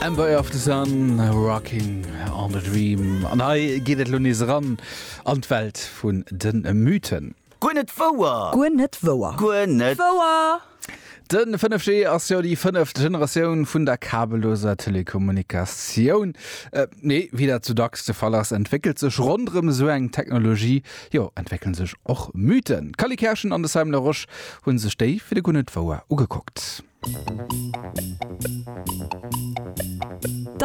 Ember of the Sun, Rocking on the Dream. An hei geet et lo nees eran an d'Welt vun de Mythen. Guer net wouer! Guer net wouer! Guer net wouer! De 5G ass jo déi fënneft Generatioun vun der kabelloser Telekommunikatioun. Mee wéi dat sou dacks de Fall ass, entwéckelt sech ronderëm esou eng Technologie, jo, entwéckelen sech och Mythen. D'Cally Kerschen an de Simon Laroche hu sech déi fir de Guer net wouer ugekuckt. 't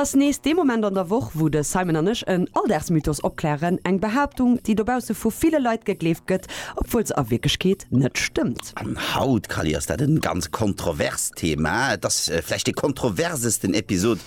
ass nees dee Moment an der Woch, wou de Simon an ech en Alldagsmythos opklären, eng Behaaptung, déi dobausse vu ville Leit gegleeft gëtt, obwuel se a Wierklechkeet net stëmmt. An haut, Kally, ass dat e ganz kontroverst Thema. Et ass vläicht dee kontroversesten Episod,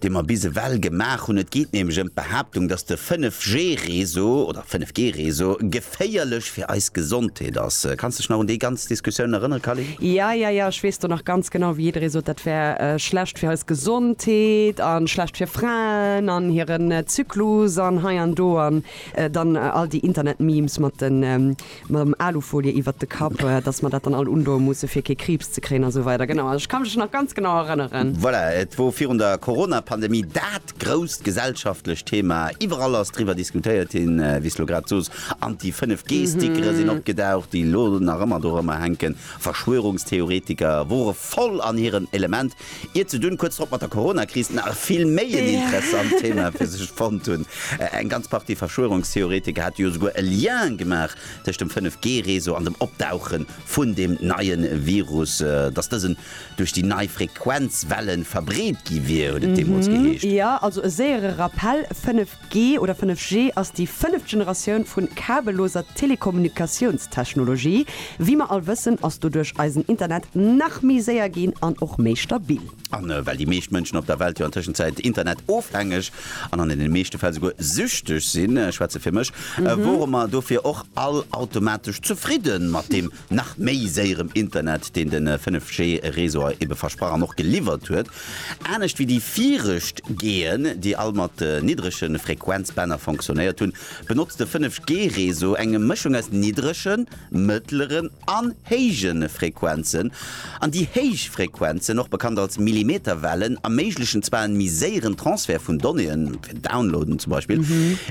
dee mer bis ewell gemaach hunn. Et geet nämlech ëm d'Behaaptung, dass de 5G-Réseau oder 5G-Réseau geféierlech fir eis Gesondheet ass. Kanns dech nach un déi ganz Diskussioun erënnere, Calin? Ja, ja, ja, ech weess do nach ganz genau, wéi jidderee sot, dat wär schlecht fir eis Gesondheet a schlecht fir Fraen an hiren Zyklus an hei an do an dann all déi Internet-Memes mat de mam Alufolie iwwert de Kapp, dass mer dat dann all undoe musse fir kee Kriibs ze kréien a sou weider. Genau, ech ka mech nach ganz genau erënneren. Voilà, et wor virun der Coronapandemie dat grousst gesellschaftlecht Thema. Iwwerall ass driwwer diskutéiert ginn, wéi s lo grad sos. An déi 5 G-Stickere sinn opgedaucht, déi lo nach ëmmer dorëmmer hänken. Verschwörungstheoretiker wore voll an hirem Element. Ier ze dunn, kuerz drop mat der Corona-Kris, nach e vill méi en interessant Thema fir sech fonnt hunn. Eng ganz Partie Verschwörungstheoretiker hate jo souguer e Lien gemaach tëscht dem 5G-Réseau an dem Opdauche vun deem neie Virus, dass dësen duerch déi nei Frequenzwellen verbreet gi wier, huet et deemools geheescht. Jo, also e séiere Rappell, 5G. 5G oder 5G ass déi fënneft Generatioun vun kabelloser Telekommunikatiounstechnologie. Wéi mer all wëssen, ass doduerch eisen Internet nach méi séier ginn an och méi stabil. A well déi meescht Mënschen op der Welt jo an Tëschenzäit Internet-ofhängeg an an deene meeschte Fäll souguer süchteg sinn, ech schwätze fir mech, wore mer dofir och all automatesch zefridde mat deem Nach méi séierem Internet, deen de 5G Réseauer ebe versprach an och geliwwert huet. Anescht wéi déi virëscht G'en, déi all mat niddrege Frequenzbänner fonctionnéiert hunn, benotzt de 5G Réseau eng Mëschung aus niddregen, mëttleren an héije Frequenzen. An déi héich Frequenzen, och bekannt als Millimeterwellen, erméiglechen zwar en méi séieren Transfert vun Donnéeën, fir Downloaden zum Beispill,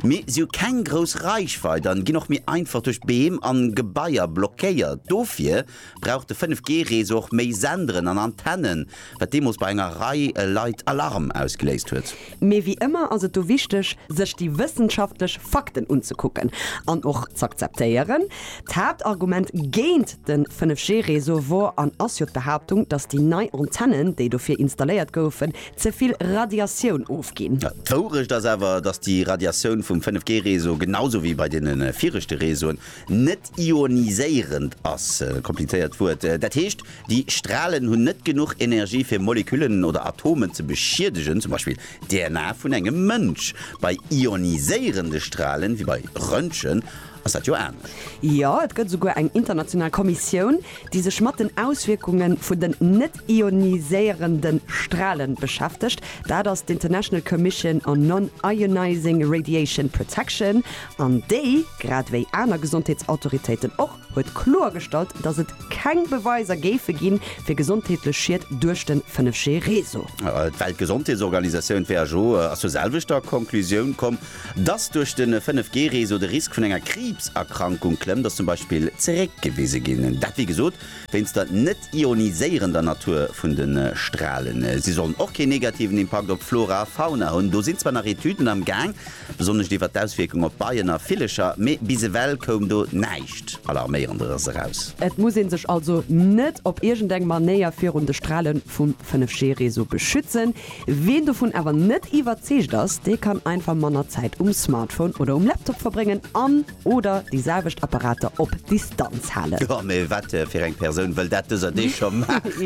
mee si hu keng grouss Reichweit an ginn och méi einfach duerch Beem an Gebaier blockéiert. Dofir brauch de 5G Réseau och méi Senderen an Antennen, wat deemools bei enger Rei Leit Alarm ausgeléist huet. Mee wéi ëmmer ass et do wichteg, sech déi wëssenschaftlech Fakten unzekucken an och z'akzeptéieren. D'Haaptargument géint de 5G-Réseau wor an ass jo d'Behaaptung, datt déi nei Antennen, déi dofir installéiert goufen, ze vill Radiatioun ofginn. D'Wourecht ass awer, datt déi Radiatioun vum 5G-Réseau, genau sou wéi bei deene viregte Réseauen, net ioniséierend ass, komplizéiert Wuert, dat heescht, Déi Stralen hunn net genuch Energie fir Moleküllen oder Atomen ze beschiedegen, zum Beispill d'DNA vun engem Mënsch. Bei ioniséierende Stralen, wéi bei Röntgen, ass dat jo anescht. Jo, et gëtt esouguer eng international Kommissioun, déi sech mat den Auswierkunge vun den net-ioniséierende Strale beschäftegt. Dat ass d'International Commission on Non-Ionizing Radiation Protection, an déi, grad ewéi aner Gesondheetsautoritéiten och, huet kloergestallt, datt et keng Beweiser géife ginn, fir gesondheetlech Schied duerch de 5G-Réseau. D'Weltgesondheetsorganisatioun, who, ass zur selwechter Conclusioun komm, datt duerch de 5G-Réseau de Risk vun enger Kriibserkrankung klëmmt, ass zum Beispill zeréckgewise ginn. Dat, wéi gesot, wéinst der net-ioniséierender Natur vun de Stralen. Si sollen och keen negativen Impakt op d'Flora a Fauna hunn. Do sinn zwar nach Etüden am Gaang. besonnesch iwwert d'Auswierkung op Beien a Villecher, mee bis ewell koum do näischt Alarméierenderes eraus. Et muss ee sech also net op iergend eng Manéier virun de Strale vum 5G-Réseau beschützen. Ween dovun awer net iwwerzeegt ass, dee kann einfach manner Zäit um Smartphone oder um Laptop verbréngen an, Oder déi selwecht Apparater op Distanz halen. Jo, mee wat fir eng Persoun wëll dat dëser Deeg scho maachen?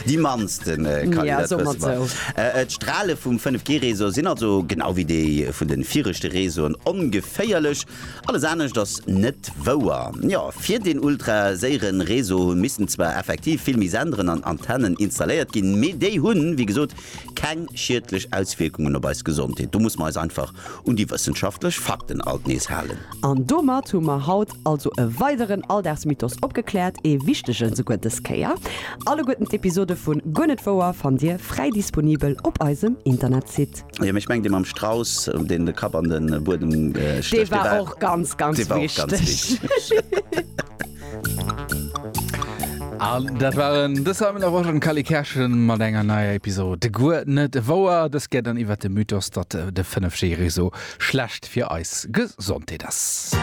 Déi mannsten kann een dat wësse mol. D'Strale vum 5G-Réseau sinn also, genau wéi déi vun de viregte Réseauen, ongeféierlech. Alles anescht ass net wouer. Jo, fir deen ultra séiere Réseau hu missten zwar effektiv vill méi Senderen an Antennen installéiert ginn, mee déi hunn, wéi gesot, keng schiedlech Auswierkungen op eis Gesondheet. Do musse mer eis einfach Un déi wëssenschaftlech Fakten alt nees halen. An domat hu mer haut also e weideren Alldagsmythos opgekläert, ee wichtegen esouguer dës Kéier. Alleguerten d'Episode vun Guer net wouer fannt Dir fräi disponibel op eisem Internetsite. Jo, mee ech mengen dee mam Strauss, deen de Kapp an de Buedem stécht, dee war. Dee war och ganz, ganz wichteg. An dat waren de Simon Laroche an Cally Kerschen mat enger neier Episode Guer net wouer. Dës Kéier dann iwwert de Mythos, datt de 5G-Réseau schlecht fir eis Gesondheet ass.